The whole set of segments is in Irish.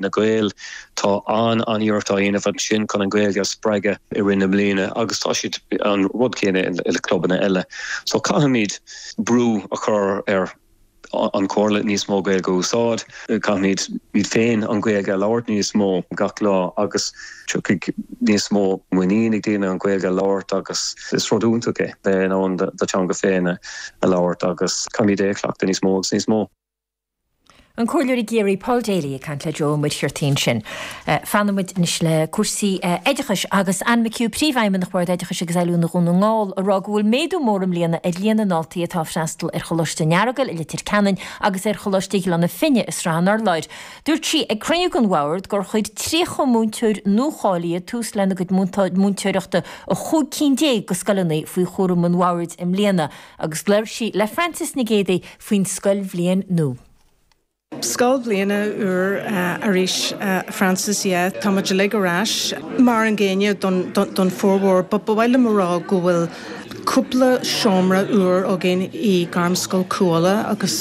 na Gaeil. Tá an-iarracht á dhéanamh ansin chun an Ghaeilge a spreagadh i rith na mbliana agus tá siad ag an rud céanna i clubanna eile. So caithfimíd brú a chur ar an Chomhairle níos mó Gaeilge a úsáid. Caithfimíd féin an Ghaeilge a labhairt níos mó gach lá agus tiocfaidh níos mó muinín ag daoine an Ghaeilge a labhairt agus is rud iontach é bheith in ann do theanga féin a labhairt agus caithfimíd é a chleachtadh níos mó agus níos mó. An Comhairleoir i gCiarraí Paul Daly ag caint le Joe Ó Muircheartaigh ansin. Fanfaimid anois le cúrsaí oideachais agus Anne McHugh, Príomhfheidhmeannach Bhord Oideachais agus Oiliúna Dhún na nGall, ag rá go bhfuil méadú mór i mbliana ar líon na ndaltaí atá ag freastal ar Choláiste an Earagail i Leitir Ceanainn agus ar Choláiste Ghleanna Finne i Srath an Urláir. Dúirt sí ag cruinniú den bhord gur chuir 30 múinteoir nuacháilithe tús lena gcuid múinteoireachta i 15 cinn de scoileanna faoi chúram an bhoird i mbliana. agus labhair sí le Frances Nic Géadaigh faoin scoilbhliain nua. Scoil bhliana úr arís a Frances, yeah, tá muid uilig ar ais mar an gcéanna don formhór but ba mhaith liom a rá go bhfuil cúpla seomra úr againn i nGairmscoil Chú Uladh agus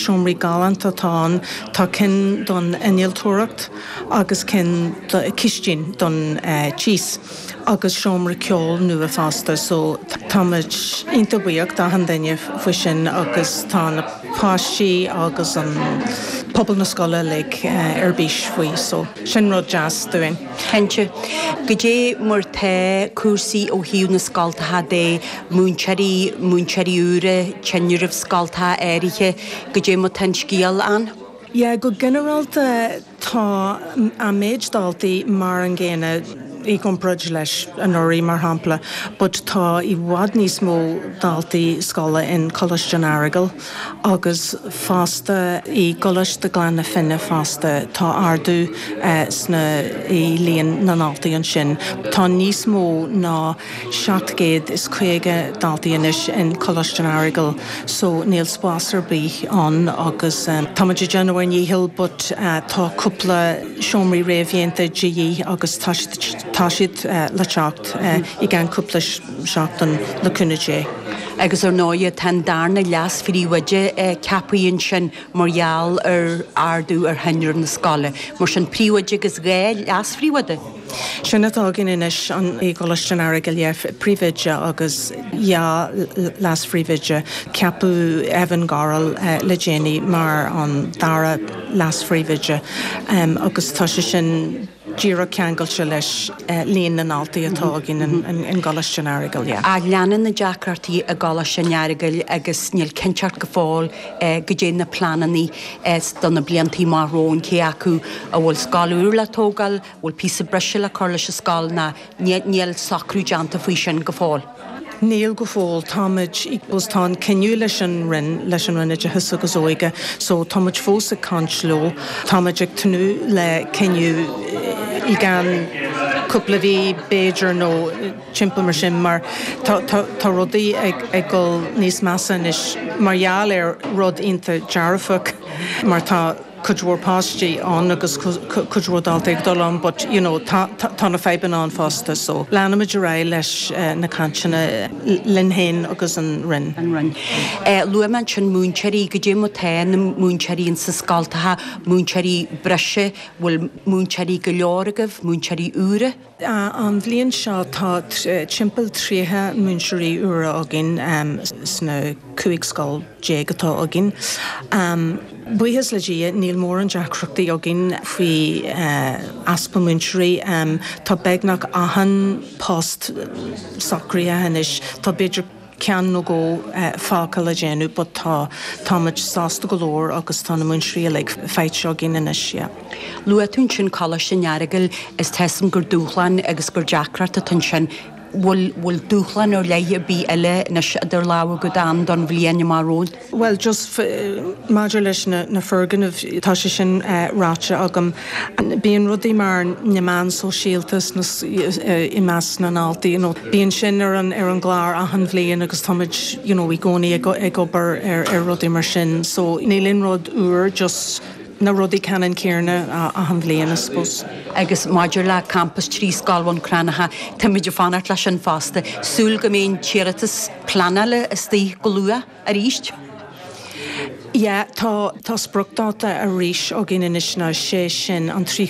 seomraí galánta atá ann, tá cinn don innealtóireacht agus cinn, cistín don tíos. agus seomra ceoil nua fosta so táimid iontach buíoch d'achan duine faoi sin agus tá na páistí agus an pobal na scoile uilig ar bís faoi so sin rud deas dúinn. Cinnte. Caidé mar tá cúrsaí ó thaobh na scoltacha de, múinteoirí, múinteoirí úra, tinreamh scoltacha áirithe, caidé mar tá an scéal ann? Yeah, go ginearálta Tá an méid daltaí mar an gcéanna i gcomparáid leis anuraidh, mar shampla, but tá i bhfad níos mó daltaí scoile in Coláiste an Earagail agus fosta i gColáiste Gleann na Finne fosta tá ardú sna i líon na ndaltaí ansin. Tá níos mó ná. 750 daltaí anois in Coláiste an Earagail so níl spás ar bith ann agus táimid ag déanamh ár ndícheall but tá cúpla seomraí réamhdhéanta de dhíth agus tá siad le teacht i gceann cúpla seachtain le cúnamh Dé. Agus ar ndóighe tá an darna leas-phríomhoide ceapaithe ansin mar gheall ar ardú ar thinreamh na scoile. Mar sin, príomhoide agus dhá leas-phríomhoide. Sin atá againn anois i gColáiste an Earagail, príomhoide agus dhá leas-phríomhoide. Ceapadh Evan Gorrell le déanaí mar an dara leas-phríomhoide agus tá sé sin díreach ceangailte leis líon na ndaltaí atá againn i gColáiste an Earagail. Ach leanann na deacrachtaí i gColáiste an Earagail agus níl cinnteacht go fóill goidé na pleananna do na blianta amach romhainn, cé acu an bhfuil scoil úr le tógáil, bhfuil píosa breise le cur leis an scoil ná níl socrú déanta faoi sin go fóill. Níl go fóill. Táimid, bhuel tá an cinneadh leis an Roinn, leis an Roinn Oideachais agus Óige so táimid fós ag caint leo. Táimid ag tnúth le cinneadh i gceann cúpla mhí b'fhéidir nó timpeall mar sin mar tá rudaí ag dul níos measa anois mar gheall ar rud ionta dearfach mar tá, cuid mhór páistí ann agus cuid mhór daltaí ag dul ann but you know tá tá na fadhbanna ann fosta so leanfaimid ar aghaidh leis na cainteanna linn féin agus an Roinn. Luaigh mé ansin múinteoirí, goidé mar tá na múinteoirí in sa scoil, tá múinteoirí breise, bhfuil múinteoirí go leor agaibh, múinteoirí úra? An bhliain seo tá timpeall 30 múinteoirí úra againn sna 15 scoil atá againn. Buíochas le Dia níl mórán deacrachtaí againn faoi easpa múinteoirí. Tá beagnach achan post socraithe anois. Tá b'fhéidir ceann nó dhó fágtha le déanamh but tá, táimid sásta go leor agus tá na múinteoirí uilig faighte againn anois, yeah. Luaigh tú ansin Coláiste an Earagail is tuigim gur dúshlán agus gur deacracht atá ansin. Bhfuil, bhfuil dúshlán ar leith ar bith eile anois idir lámha agat ann don bhliain amach romhainn? Bhuel, just maidir leis na foirgnimh, tá sé sin ráite agam. Bíonn rudaí mar na meáin shóisialta i measc na ndaltaí, you know, bíonn sin ar an gclár achan bhliain agus táimid, you know, i gcónaí ag obair ar rudaí mar sin. So, níl aon rud úr, just na rudaí ceannan céarna achan bhliain, I suppose. Agus maidir le campas trí scoil Bhun Cranncha, táimid ag fanacht leis sin fosta. Súil go mbeidh an t-iarratas. pleanála istigh go luath arís. Yeah, tá spriocdáta arís againn anois ná sé sin an 30ú.